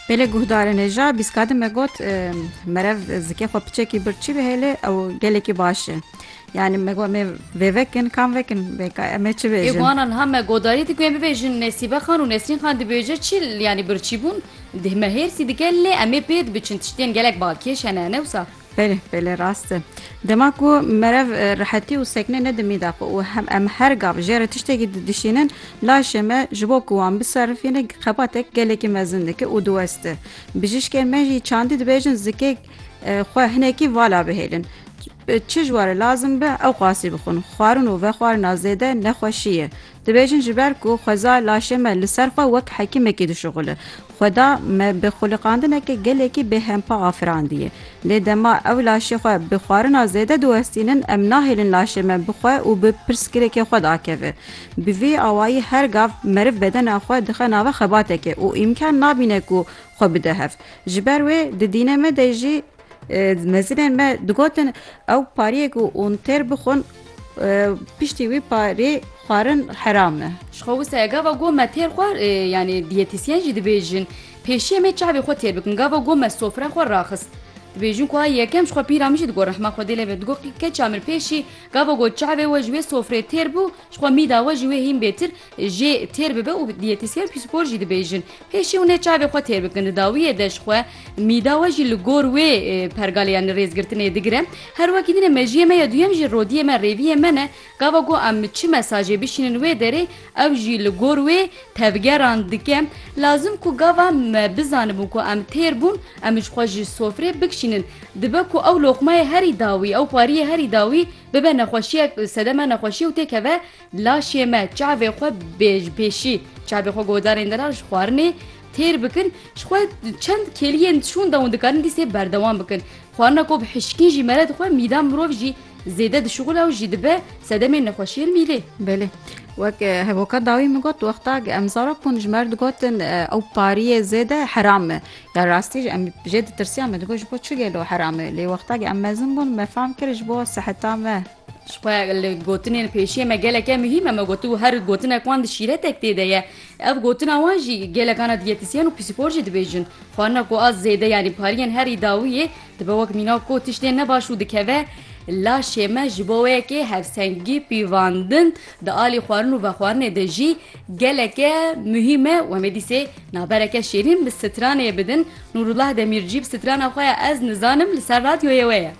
Pêlê guhdarên e ja bîskadin me got merev zikê xwe piçekî bir çi bihêlê ew gelekî baş e. Yani me got me vê vekin kam vekin vêka em ê çi bêjin. Ê guhanan ha me godarî diku em bibêjin Nesîbe Xan û Nesrîn Xan dibêje çi yani birçî bûn me hêrsî dike lê em ê pê dibiçin tiştiyên gelek balkêş hene ne wisa. Belê, belê rast e. Dema ku merev rehetî û sekne nedimî da xwe û em her gav jê re tiştekî didişînin, laşê me ji bo ku wan biserifîne xebatek gelekî mezin dike û diweste. Bijîşkên me jî çandî dibêjin zikê xwe hinekî vala bihêlin. Çi ji warê lazim be ew qasî bixwin. Xwarin û vexwarina zêde nexweşî ye. Dibêjin ji ber ku xweza laşê me li ser xwe wek hekîmekî dişuxulin. Xweda me bi xuliqandineke gelekî bêhempa afirandiye. Lê dema ew laşê xwe bi xwarina zêde diwestînin em nahêlin laşê me bi xwe û bi pirsgirêkê xwe dakeve. Bi vî awayî her gav meriv bedena xwe dixe nava xebatekê û îmkan nabîne ku xwe bide hev. Ji ber wê di dînê me de jî. Mezinên me digotin ew pariyê ku hûn têr bixwin piştî wî parê xwarin heram e. Ji xwe wisa ye gava got me têr xwar yanî diyetîsyen jî dibêjin pêşiyê me çavê xwe têr bikim gava got me sofra xwe raxist. Dibêjin ku a yekem ji xwe pîra min jî digot rehma xwedê lê be digot keça min pêşî gava got çavê we ji wê sofrê têr bû ji xwe mîda we ji wê hîn bêtir jê têr bibe û diyetîsyen pîsûkor jî dibêjin Pêşî hûn ê çavê xwe têr bikin. Di dawiyê de ji xwe mîda we jî li gor wê pergalê yanî rêzgirtinê digire. Her wekî din e mejiyê me ya duyem jî rodiyê me, rêviyê me ne. Gava ku em çi mesajê bişînin wê derê ew jî li gor wê tevgeran dike. Lazim ku gava me bizanibûn ku em têr bûn, em ji xwe ji sofrê bikşînin. Dibe ku ew loqmeyê herî dawî, ew xwariyê herî dawî bibe nexweşiyek sedeme nexweşiyê û têkeve Laşê me çavê xwe bê ji pêşî çavê xwe godarên din re ji xwarinê têr bikin, ji xwe çend kêliyên dişon dawin dikarin dîsê berdewam bikin. Xwarina ku bi hişkî jî mere dixwe mîdan mirov jî zêde dişuxula û jî dibe sedemên nexweşiyên mîlê. Belê. Wek hevoka dawî min got wexta em zarok bûn ji mer digotin ew pariyê zêde heram e. Ya rastî jî em jê ditirsîyan me digot ji bo çi gelo heram e. Lê wexta em mezin bûn me fam kir ji bo seheta me Ji xwe li gotinên pêşiyê me geleke muhîm e. Me gotibo her gotinek wan di şîretek tê de ye. Ev gotina wan jî gelekana diyetisyen û psîkor jî dibêjin. Xwarina ku a zêde yanî pariyên herî dawî yê dibe wek mîna ku tiştên ne baş û dikeve laşê me ji bo yekê hevsengî pîvandin di alî xwarin û vexwarinê de jî geleke muhîm e û em ê dîsê nabereke şêrîn bi stranê bidin. Nûrullah Demîrcî bi strana xwe ya Ez Nizanim li ser radyoyê we ye.